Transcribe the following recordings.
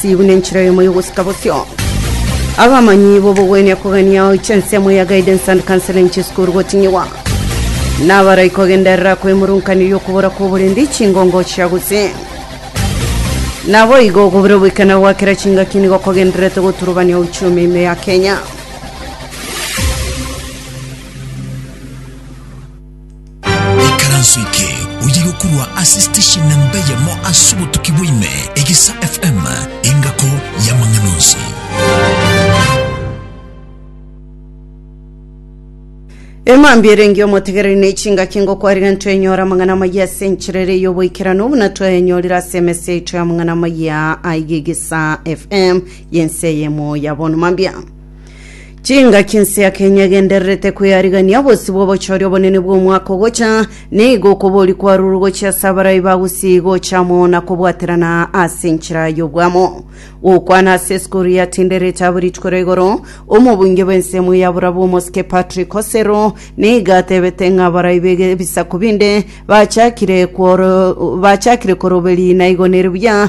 Sibu nenchera eyemo y'ogosika bosio. Abamanyi b'obogwenia kogania goicha ensemo ya Guidance and Counseling Chisukuru gotinyigwa. Nabarai kogenderera kwemurunkaniri okobora kw'oborendi chingongo chia gose. Naboigo okobura oboikana gwa kera chingaki nigo kogendererete goturubania uchumi ime ya Kenya. Ikaranso eke oye gokorwa ase station namba eyemo ase obotuki bwaime, Egesa FM, engako y'amang'ana onsi. emambia erenge omotegereri na echingaki ngokwarire ntwenyora amang'ana amayia ase enchera ere y'oboikerano buna twayanyorire ase emesa yaito y'amang'ana amayia aigegesa fm yense yemo ya bono mambia Chingaki nsiake nyegendererete kwearigania bosio bw'obochori obonene bw'omwaka ogocha, nigo okobori kwa ruru gochia ase abarai ba Gusii gocha amo na kobwaterana ase enchera y'obwamo. Gokwana ase esukuru ya Tindereti abwo rituko ria igoro, omobunge bw'ensemo ya Burabu omosike Patrick Kosero nigo atebete ng'a abarai b'ebisaku binde bachakire kworo- bachakire koroberi naigo nere buya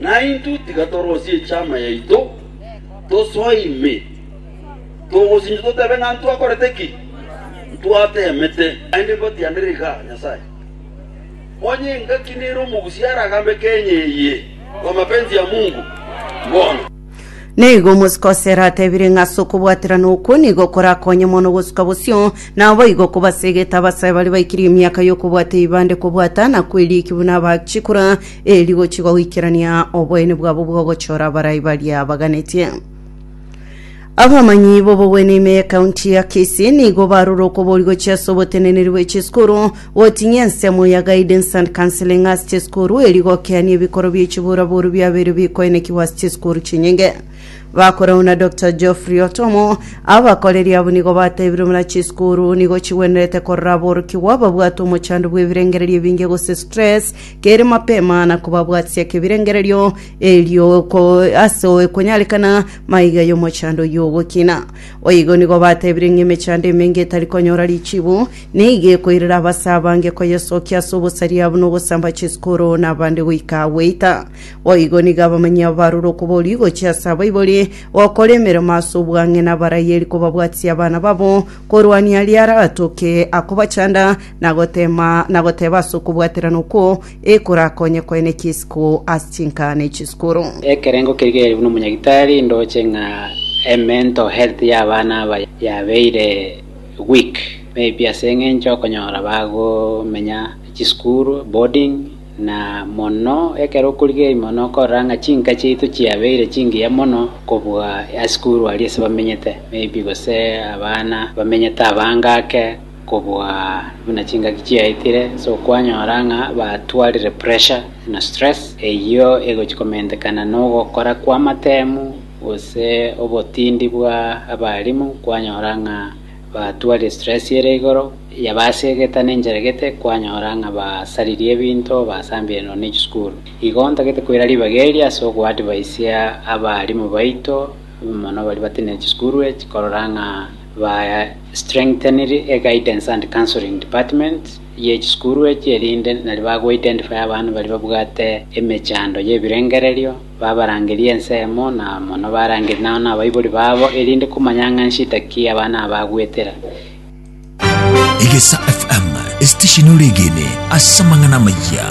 Naintwe tiga torosie echama yaito, tosoe ime, togosinche totebe ng'a ntwakorete ki? Ntwateemete. Naende ngotianera iga, Nyasae, onye engaki nere omogusia aragambe Kenya eye kwa mapenzi ya Mungu, mbono. Na igo omosike o Sera atebire ng'a ase okobwaterana okwo nigo korakonye mono gosuka bosio, na boigo kobasegete abasae baria baikirie emiaka y'okobwata eibande kobwata na kweriiki buna abachikora, ee rigochigwa goikerania oboyeni bwabo bw'ogochora abarai baria baganetie. Abamanyi b'obogwene ime y'ekaunti ya Kisii nigo barure okobori gochia ase oboteneneri bwe chisukuru Gotinyia ensemo ya Guidance and Counseling ase chisukuru erio igokeania ebikoro bie chiburaburu biabeire bikoenekigwa ase chisukuru chinyinge. Bakorau na Dr. Geoffrey Otomo, abakoreri abwo nigo batebire buna chisukuru nigo chigwenerete korora aborokigwa ababwate omochando bw'ebirengererio ebinge gose stress kere mapema na kobabwatisia kebirengererio erio ko- ase oekonyarekana maiga y'omochando oyio ogokina. Boigo nigo batebirie ng'a emechando emenge etari konyora richibu nigo ekoirera abase abange koyesokia ase obosaria buna ogosamba chisukuru na abande goika gweita. Boigo nigo abamanyi abo barure okoborio gochia ase abaibori gokora emeremo ase obwang'ina abaraieri kobabwatisia abana babo korwania aria aratoke akobachanda na gotema na goteba ase okobwaterana okwo ekorakonye koene chisiko ase chinkara ne chiskuru. Ekerengo keria gairirwe nomonyagitari ndoche ng'a emental health y'abana aba yabeire weak maybe ase eng'encho okonyora bagomenya chisukuru, boarding, na mono ekero okorigereria mono okorora ng'a chinka chiaito chiabeire chingiya mono kobua asukuru aria ase bamenyete maybe gose abana bamenyete abange ake. Kobua buna chingaki chiaetire, ase okwanyora ng'a batwarire pressure na stress eyio egochia komentekana nogokora kw'amatemu gose obotindi bwa abalimu, kwanyora ng'a batwarire stress ere igoro, yabasegeta nencheregete, kwanyora ng'a basaririe ebinto, basambire nonya ne chisukuru. Igo ntagete koira ribaga eri ase ogoadvisia abalimu baito, mono baria batenena chisukuru echi korora ng'a. Ba strengthened eguidance and counseling department ye chisukuru echi erinde nari ba go identify abana baria babwate emechando ye ebirengererio, babarangerie ensemo na mono barangerie nao na abaibori babo erinde komanya ng'a nshida ki abana aba bagwetera. Egesa FM, esitesheni ore egene ase amang'ana amayia.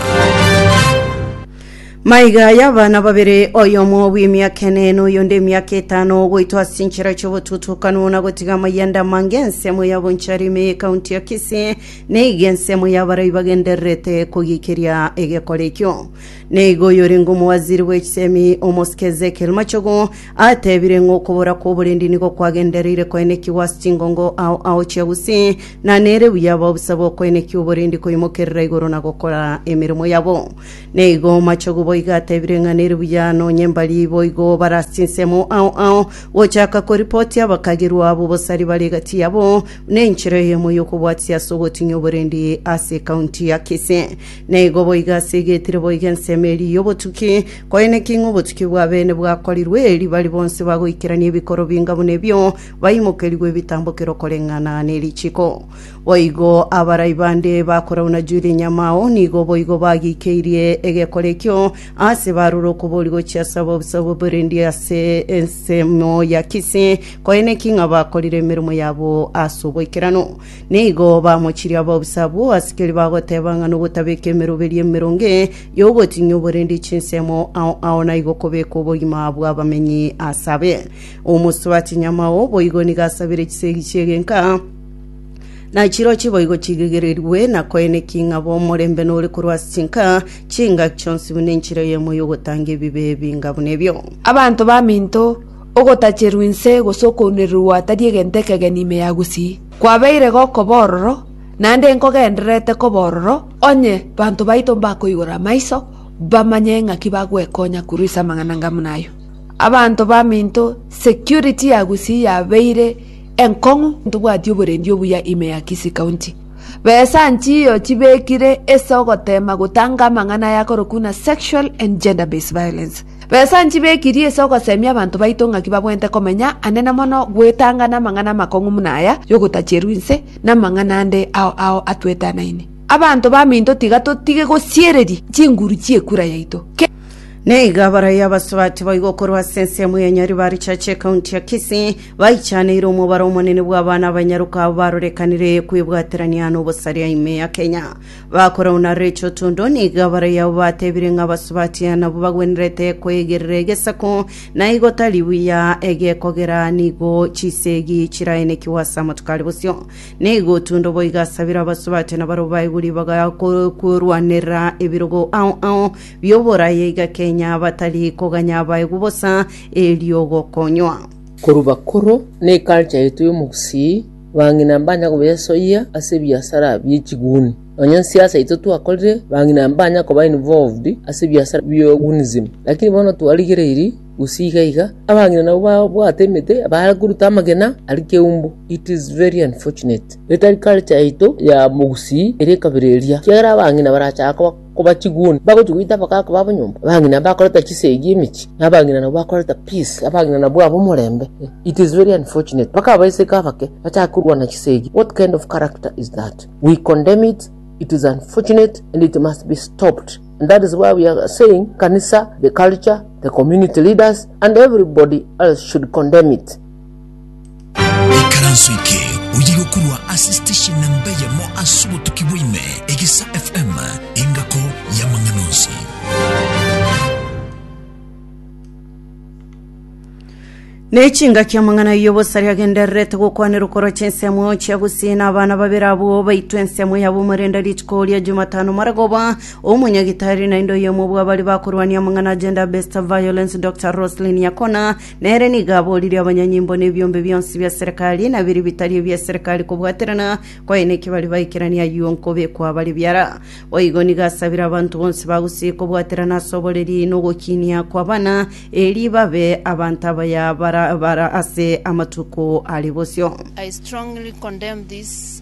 Maiga aya abana babere, oyomo bw'emiaka ene, na oyonde emiaka etano, goitwa ase enchera chi'obotutukanu na gotiga amayanda amange ensemo ya Bonchari ime y'ekaunti ya Kisii, neiga ensemo y'abarai bagendererete kogiikeria egekora ekio. Neiga oyorenge omowaziri bw'echisemi, Omosike Ezekiel Machogu, atebire ng'a okobora kw'oborendi nigo kwagendereire koenekigwa ase chingongo ao ao chia Gusii, na nere buya abaobusa bokoenekia oborendi koimokerera igoro na gokora emeremo yabo. Naigo omochogu boigo atebire ng'a nere buya nonyembari boigo obare ase chinsemo ao ao, gochaka koripotia abakagirwa abo bosari bare egati yabo, na enchera eyemo y'okobwatia ase ogotinya oborendi ase ekaunti ya Kisii. Naigo boigo ase egetire boigo ensemo eria y'obotuki, koeneki ng'a obotuki bwa bene bwakorirwe, erio baria bonsi bagoikerania ebikoro binga buna ebio baimokerigwe ebitambokero koreng'ana nerichiko. Boigo abarai bande bakorauna Juda enyamao nigo boigo bagikeirie egekora ekio, aase barure okobori gochia ase ababusabu b'Rindi ase ensemo ya Kisi, koene ki ng'a bakorire emeremo yabo ase oboikeranu. Nigo bamochirie ababusabu, asikeri bagoteba ng'a nogotabeka emeroberi emeronge y'ogotinyia oborendi chinsemo ao ao naigo kobeka obogima bw'abamenyi ase abe. Omosubati nyamao boigo nigo asabire chisegi chi'egenka, Na chirochio boigo chiregererigwe na koeneki ng'a omorembe nore korwa ase chinka, chinka chionsi buna enchera eyemo y'ogotanga ebibe ebinga buna ebio. Abanto baminto, ogotacherwa inse gose okounererwa tari egento ekegeni ime ya gusii. Kwabeire goko bororo, naende nkogendererete koba ororo, onye banto baito mbakoigora amaiso, bamanye ng'aki bagwekonya korwa ase amang'ana 'ngamuna ayio. Abanto baminto, security ya gusii yabeire Enkong'u ntobwati oborendi obuya ime ya Kisii County. Besa nchiyo chibekire ase ogotema gotanga amang'ana aya akorokwa ng'a sexual and gender based violence. Besa nchibekirie ase ogosemia abanto baito ng'aki babwenerete komenya ande na mono gwetanga namang'ana amakong'u muna aya yogotacherwa inse namang'ana ande ao ao atwetanaine. Abanto baminto tiga totige gosiereria chinguru chiekura yaito. Ke. Neiga abaraia abasubati boigo korwa ase ensemo ya Nyaribari Church ecounty ya Kisii. Baichaneire omobaro omonene bw'abana abanyaroka abo barorekanire kwebwaterania n'obosaria ime ya Kenya. Bakorau na Rachel Tondo nigo abarayi abo batebire ng'a abasubati nabo bagwenerete kwegerera egesaku, na igo tari buya egekogera nigo chisegi chiraenekigwe ase amatuko are bosio. Nigo Tondo boigo asabire abasubati na barabwo baigwe ribaga ko- korwanerera ebirogo ao ao bi'oboraya iga Kenya batari koganya abaegwe bosa erio gokonywa. Korwa bakoro na eculture yaito y'omogusii, bang'ina mbanya kobesoyia ase ebiasara bi'echiguni. Nonya nsiasa yaito twakorire, bang'ina mbanya koba involved ase ebiasara bi'ogunism. Lakini bono twarigereiri gusii iga iga, abang'ina nabwo babwate emete bare koruta amagena aria keumbu. It is very unfortunate. Etari culture yaito ya mogusii ere ekabera eria, kiagera abang'ina barachaka koba. Koba chiguni, bagochia goita abagaaka babo nyomba, abang'ina bakoreta chisegi emechie, na abang'ina nabo bakoreta peace, abang'ina nabwo abo omorembe. It is very unfortunate, mpaka abaiseke abake bachake korwana chisegi, what kind of character is that? We condemn it, it is unfortunate and it must be stopped. And that is why we are saying kanisa, the culture, the community leaders and everybody else should condemn it. Ikaranso eke oye gokorwa ase station namba eyemo ase obotuki bwaime egesa FM engako y'amang'ana onsi. n'echingaki amang'ana y'obosari agendererete gokwanerwa korocha ensemo chia gusina abana babere abwo baitwe ensemo yabo omorenda rituko ria jumatano maragoba omonyagitari naende oyomo bw'abari bakorwania amang'ana agenda best violence dr roslin yakona Nere nigo aboririe abanyanyimbo na ebiombe bionsi bia Serikali, na biria bitari ebia Serikali kobwaterana kwaye na ekebari baikeranie ayio nkobekwa bare biara. Boigo nigo asabire abanto bonsi ba Gusii kobwaterana ase oboreri na ogokinia kw'abana, erio babe abanto abaya bara bara ase amatuko are bosio. I strongly condemn this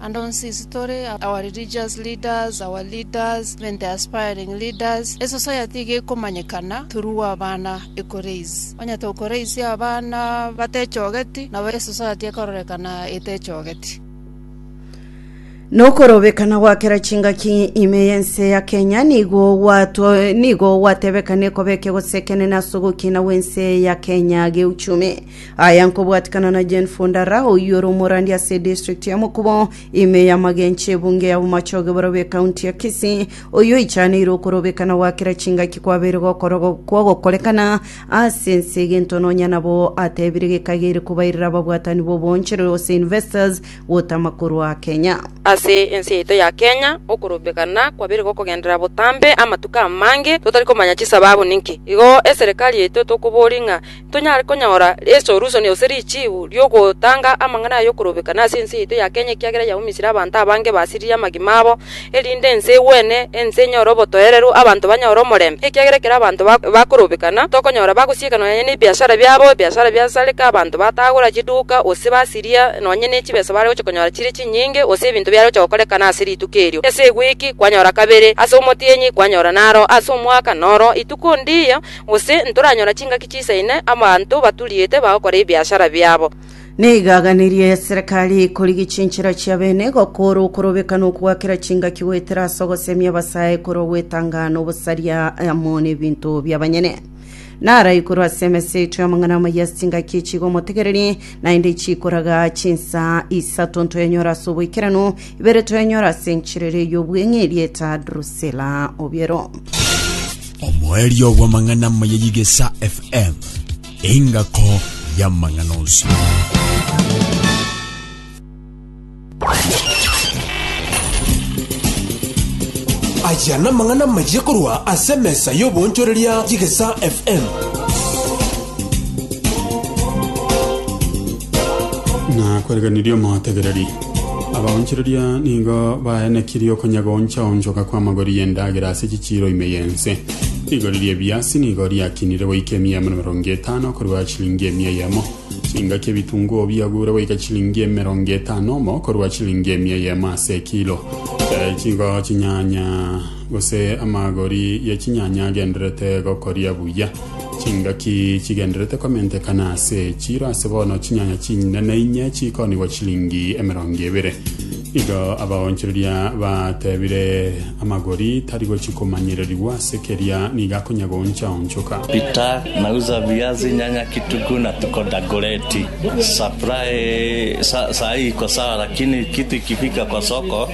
And on sisi tore our religious leaders, our leaders, even the aspiring leaders, a society iga ekomanyekana through abana ekoraise. Onye tokoraise abana batechogeti, nabo a society ekororekana etechogeti. Nokorobekana gwa kera chingaki ime y'ense ya Kenya nigo gwato- nigo gwatebekane koba ekegose ekenene ase ogokina gw'ense ya Kenya geuchumi. Aya nkobwatikana na Jane Fundara oyio ore omorandi ase edistrict ya Mokubo, ime y'amagencho ebunge ya Bomachoge borobio ekaunti ya Kisii, oyio oichaneire okorobekana gwa kera chingaki kwabeire gokoro- kwagokorekana ase ense egento nonya nabo atebire gekagere kobairera ababwatani b'oboonchore gose investors gotama korwa Kenya. Ase ense yaito ya Kenya, okorobekana kwabeire gokogenderera botambe amatuko amange totari komanya chisababu ninki. Igo eserekari yaito tokoboria ng'a Tonyare konyora esolusoni gose richiibu ri'ogotanga amang'ana ay'okorobeka nase ense yaito ya Kenya ekiagera yaumisire abanto abange basiririe amagima abo, erinde ense egwene, ense enyore obotoereru, abanto banyore omorembe. Ekiagera ekero abanto bakorobekana, tokonyora bagosieka nonya nebiashara biabo, ebiashara biasareka, abanto batagora chiduka, gose basiria nonya nechibesa bare gocha konyora chire chinyinge, gose ebinto biare gocha gokorekana ase rituko erio. Ase egwiki, kwanyora kabere, ase omotienyi, kwanyora naro, ase omwaka, noro ituko ndiya. Gose ntoranyora chingaki chiisaine abanto baturiete bagokora ebiashara biabo. Neigaganirie y'eserekari korigia chinchera chi'abeene gokoora okorobeka n'okogakera chingaki goetera ase ogosemia abasae korwa gwetanga n'obosaria amo n'ebinto bi'abanyene. Narai korwa ase emesa yaito y'amang'ana amaya ase chingaki echigomotegereria, naende chiikoraga chinsa isato ntoyanyore ase oboikeranu, Ibere twenyora ase enchiriri y'obweng'eeri eta Drusila obiero. omoerio bw'amang'ana amaya y'igesa fm engako y'amang'ana onsi aya namang'ana maye korwa ase mesa y'oboonchoreria y'igesa fm na kwerekanirie omotegereri Abaonchoreria nigo baenekirie okonyagoncha-onchoka kw'amagori y'endagera ase chichiiro ime y'ense. Rigori ri'ebiasi nigo riakinire goika emiemo emerongo etano korwa chilingi emia eyemo. Chingaki ebitunguo biagure goika chilingi emerongo etano omo korwa chilingi emia eyemo ase ekilo. Eh, chigo chinyanya Gose amagori ya chinyanya agenderete gokoria buya. Chingaki chigenderete komentekana ase echiro ase bono chinyanya chinene inye chikoonigwa chilingi emerongo ebere. Igo abaonchoreria batebire amagori tari gochikomanyererirwa ase keria nigo akonya goonchaonchoka. Peter, Nauza viazi, nyanya, kitunguu na tuko dagoreti. Supply saa hii iko sawa lakini kitu ikifika kwa soko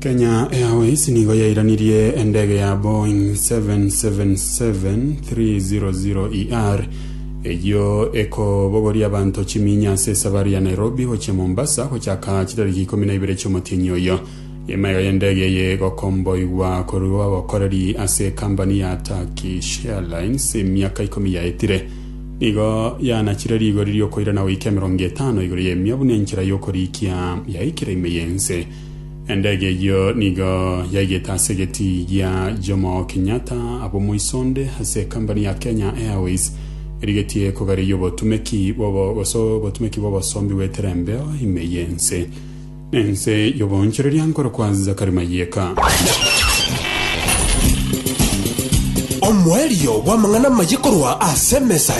kenya airways nigo yairanirie endege ya boeing 777-300er eyio ekobogoria abanto chiminya ase esafari ya nairobi gochia mombasa gochaka chitariki ikomi na ibere chiomotienyi oyo emaiga y'endege eye egokomboigwa korwa abakoreri ase ekambani ya turkish airlines emiaka ikomi yaetire Nigo yaanachire rigori ri'okoirana goika emerongo etano igoro y'emia buna enchera y'okoriikia yaikire ime y'ense. Endege eyio nigo yaigete ase egetii gia Jomo Kenyatta ab'omoiso onde ase ekambani ya Kenya Airways erigetie kogareria obotumeki bw'obo- gose obotumeki bw'obosombi bw'eterembeo ime y'ense nense y'oboonchoreria nkorokwa Zachary Mayeka. Omoerio bw'amang'ana amaye korwa ase emesa